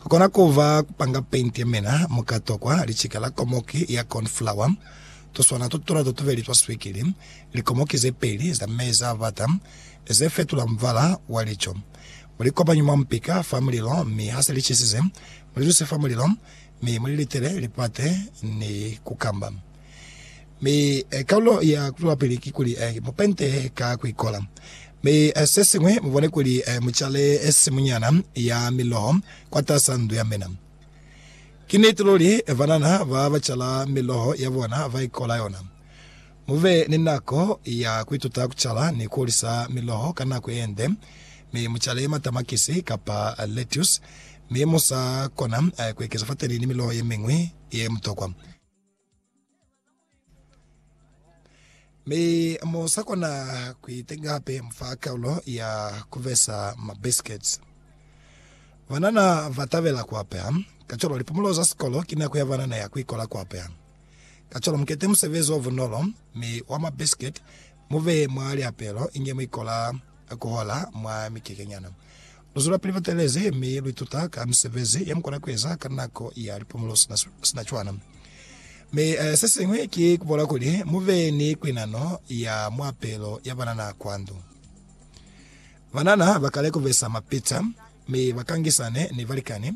Ku kona ku ba ku panga paint ye mena, mu ka tokwa licika la komoki ya corn flour, tuswana to tuna to tubeli twa swikili, likomoki ze peli za meza a bata ze fetula mubala wa lico. Mu li kopanye mwa mupika fa mulilo, mi ha se li cisize, mu li tuse fa mulilo, mi mu li litele lipate ni kukamba. Mi kaulo ya kutwelapili kikuli mu pente ka kuikola. Mi sesiñwi, mubone kuli mucale simunyana ya miloho kwatasaa ndu ya mina. Ki niti luli, banana ba bacala miloho ya bona baikola yona. Mube ni nako ya kuituta kucala ni kuhulisa miloho ka nako yende, mi mucale matamakisi kapa lettuce, mi musa kona kuekeza fateni ni miloho yemiñwi yemutokwa. Mi mu sa kona ku itenga hape mu fa kaulo ya ku besa mabiskets. Banana ba tabela ku apeha, kacwalo lipumulo za sikolo ki nako ya banana ya ku ikola ku apeha. Kacwalo mukete musebezi o bunolo mi wa mabisket Mu beye mwa liapelo inge mu ikola ku hola mwa mikekenyana. Lu zwelapili lu teelezi mi lu ituta ka misebezi ye mu kona ku eza ka nako ya lipumulo sina, sina cwana. Mi se siñwi ki ku bola kuli mu be ni kuinano ya muapelo ya banana kwa ndu. Banana ba kale ku besa mapita mi ba kangisane ni balikani.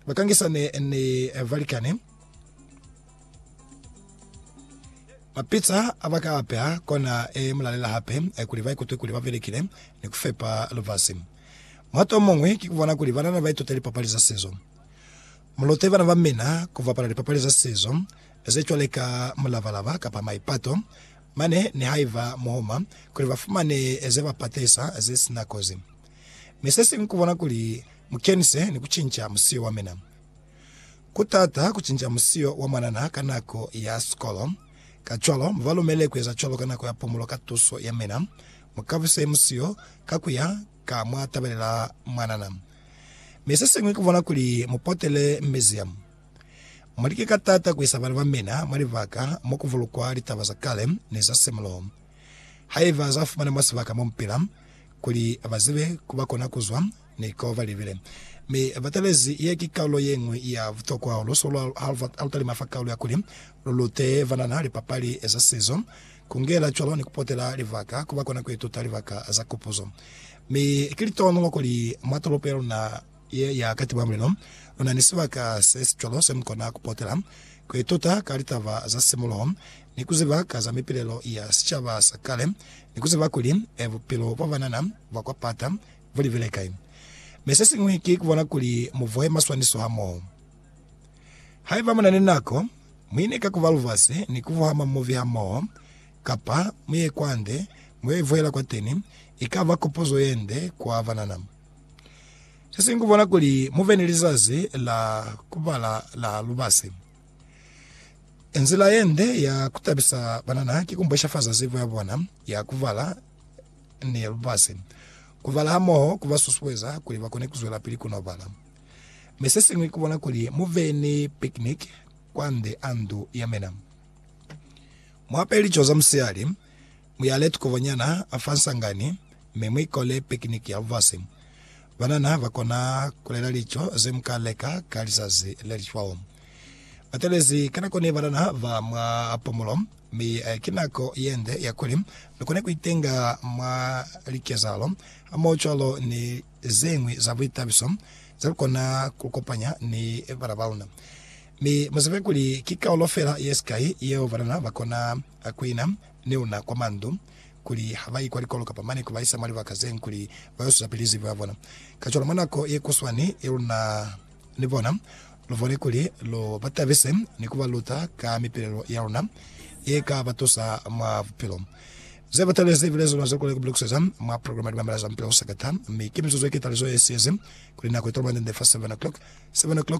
Bakangisane ni balikani. Mapitsa abaka apeha kona e mulalela hape kuli baikutwe kuli babelekile ni kufepa lubasi. Muhato omuñwi ki kubona kuli banana baitute lipapali za sizo. Mulute bana bamina kubapala lipapali za sizo zecwaleka mulabalaba kapa maipato, mane nihaiba muhuma, kuli bafumane zebapatisa zesina kozi. Mi sesiñwi kubona kuli mukenise ni kucinca musiyo wa mina. Kutaata kucinca musiyo wa mwanana ka nako ya sikolo, kacwalo mubalumele kueza cwalo ka nako ya pumulo ka tuso ya mina. Mukabuse musiyo ka kuya ka mwatabelela mwanana. Mi sesiñwi kubona kuli mupotele museum. Mulike ka taata kuisa bana ba mina mwa libaka mokubulukwa litaba za kale ni za semuluho, haiba zafumana mwa sibaka momupila. kuli ba zibe ku ba kona ku zwa, ni ko ba libile. Mi ba talezi ye ki kalulo ye ñwi ya butokwa hahulu so lwa ha lu talima fa kalulo ya kuli lu lute banana lipapali za sizo, ku ngela cwalo ni ku potela libaka ku ba kona ku ituta libaka za kupuzo. Mi ki litohonolo kuli mwa tolopo ya luna Ye ya ka tiba mulelo. Lu na ni sibaka se si cwalo se mu kona ku potela kuli tota ka litaba za simuloho, ni ku ziba ka za mipilelo ya sicaba sa kale, ni ku ziba kuli bupilo bwa banana bwa kwa pata bu libile kai. Mi se siñwi ki ku bona kuli mu vohe maswaniso hamoho. Haiba mu na ni nako, mu ine ka ku ba lubasi ni ku vuha mamuvi hamoho, kapa mu ye kwande mu yo ivuhela kwateni, ikaba kopozo ye nde kwa banana. Se singwi bona kuli mu ve ni lizazi la ku bala la lubasi. Nzila ye nde ya ku tabisa banana ki ku mbweshafaza zibo ya bona ya ku bala ni lubasi. Ku bala hamoho ku ba susueza kuli ba kone ku zwelapili ku n'o bala. Mi se siñwi ki ku bona kuli mu ve ni picnic kwande a ndu ya mina. Mu ape lico za musihali. Muyale tukovonyana fa nsangani, mi muikole picnic ya bufasi. Banana bakona kulela lico zemuka leka ka lizazi lelicwaho. Batelezi ka nako ni banana ba mwa pumulo, mi ki nako yende ya kuli lukone kuitenga mwa likezahalo hamoho cwalo ni zeñwi za buitabiso zelukona kulukopanya ni bana baluna. Mi muzibe kuli ki kaulo fela yesikai yeo banana bakona kuina ne una kwa mandu kuli ha ba i kwa likolo kapa mane ku ba isa mwa libaka ze ñwi kuli ba yo suza pili zibo ya bona. Kacwalo mwa nako ye kuswani ye lu na ni bona, lu bone kuli lu ba tabise ni ku ba luta ka mipilelo ya luna ye ka ba tusa mwa bupilo. Ze bataile ze bile zona ze lu kona ku bilukuseza mwa programa ya Ku Mamela za Mupila o Sakata, mi ki mizuzu ye ketalizo ye siezi kuli nako i tolomande nde fa 7:00, 7:00.